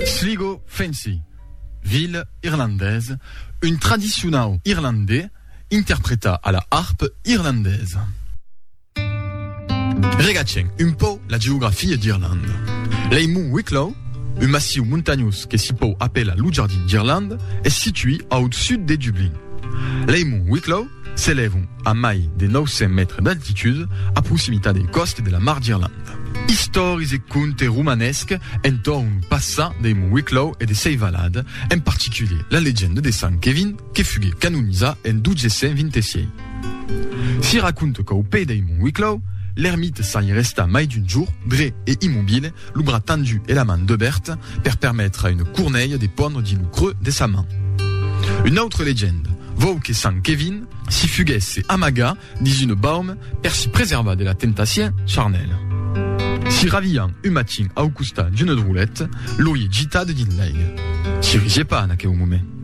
Sligo Fancy, Vil irlandés, un tradicionau irlandés interpretat a la harpe irlandesa. Regatgem un pauc la geografia d'Irlanda. Lei Mont Wicklow, un massiu montanhós que s'i pòu apelar lo Jardin d'Irlanda, es situí au sud de Dublin. Lei Mont Wicklow S'elèvan a mai de 900 mètres d'altitud, a proximitat dei còste de la Mar d'Irlanda. Istòris e conte romanesc entorn lo passat dei Mont Wicklow e de sei valad, en particulier la legenda de Sant Kevin que fugué canonizat en 1226. Si raconta qu'au pè dei Mont Wicklow, l'ermita s'airestà mai d'un jorn dret e immobile, Lo bras tendu e la man debèrt per permetre a une cornelha de pondre dins lo creux de sa man. Una autre legenda vòu que sant Kevin si fuguèsse amagat dins une baume per si preservar de la temptacion charnèla. Si ravián un matin au costat d'une drolèt, l'auie gitat dins l'aiga. Si risié pas en aqueu moment.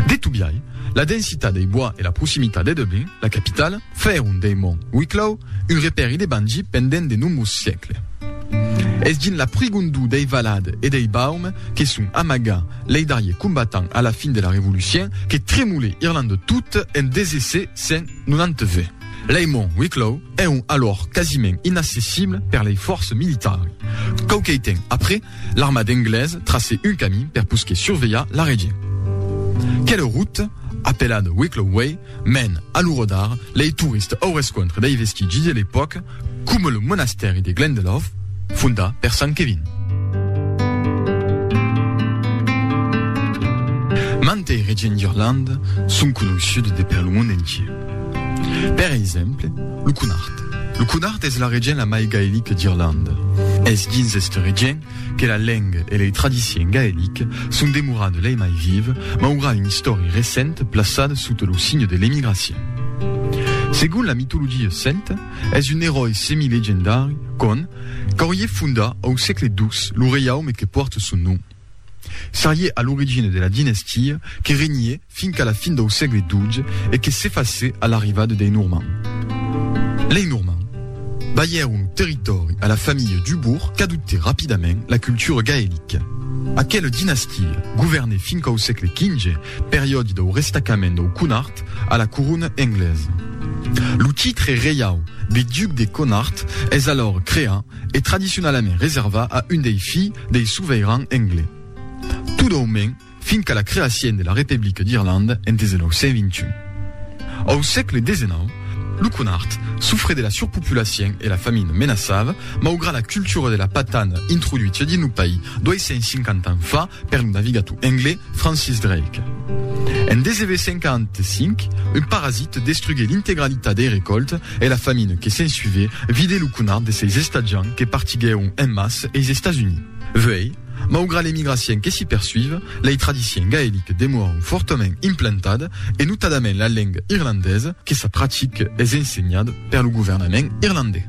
De tot biais, la densitat dei bois e la proximitat de Dublin, la capitala, fèron dei monts Wicklow un repèri de bangir pendent de nombrós siècles. Es dins la prigondor dei valades e dei baumes que son amagats lei darriers combatents a la fin de la Revolucien que tremolè Irlanda tot en 1792. Lei monts Wicklow èron alòr quasiment inaccessibles per lei fòrces militari. Quauquei temps après, L'armada englesa tracè un camin per posquer survelhar la region. Quela ruta, apelada Wicklow Way, mèn, a lo rodar, lei tourista au rescontre dei vestigis de l'epòca, coma lo monastèri de Glendalough, fondat per Sant Kevin. Mantei regions d'Irlanda son coneissudes de per lo mond entier. Per exemple, lo Cunard. Lo Cunard es la region la mai gaelica d'Irlanda. Es dins esta region que la lenga e lei tradicion gaelica son demorada lei mai viva, maura una istòria recenta plaçada sota lo signe de l'emigracion. Segon la mitologia celta, es un eròi semi-legendari, Conn, qu'auriá fondat au sègle ii lo reiaume que pòrta son nom. Serie a l'origina de la dinastia que regnè fin qu'a la fin dau sègle xii e que s'efacè a l'arrivada dei Normands. Lei Normands balhèron lo territòri a la familha Dubourg qu'adoptè rapidament la cultura gaelica. Aquela dinastia governè fin quau sègle xv, periòdi dau restacament dau Connart a la corona englesa. Lo titre reiau de Duc de Connart es alòr creat e tradicionalament reserva a un dei filh dei soveiranh englés, tot au mens fin qu'a la creacien de la Republique d'Irlande en 1921. Au sègle desenau, lo Connacht sofre de la surpopulacien e la famine menaçava, maugrat la cultura de la patana introduitia dins lo país 250 ans fa per lo navigator englés, Francis Drake. En 1945, un parasit destrugué l'integralitat dei recòltes e la famina que s'ensuivèt vidèt lo conat de seis estatjants que partiguèron en mas eis Estats Units. Vuei, maugrat l'emigracien que s'i persuiv, lei tradicien gaeliques demoràn fòrtament implantad e notadament la lenga irlandesa que s'a pratic es ensenhad per lo governament irlandés.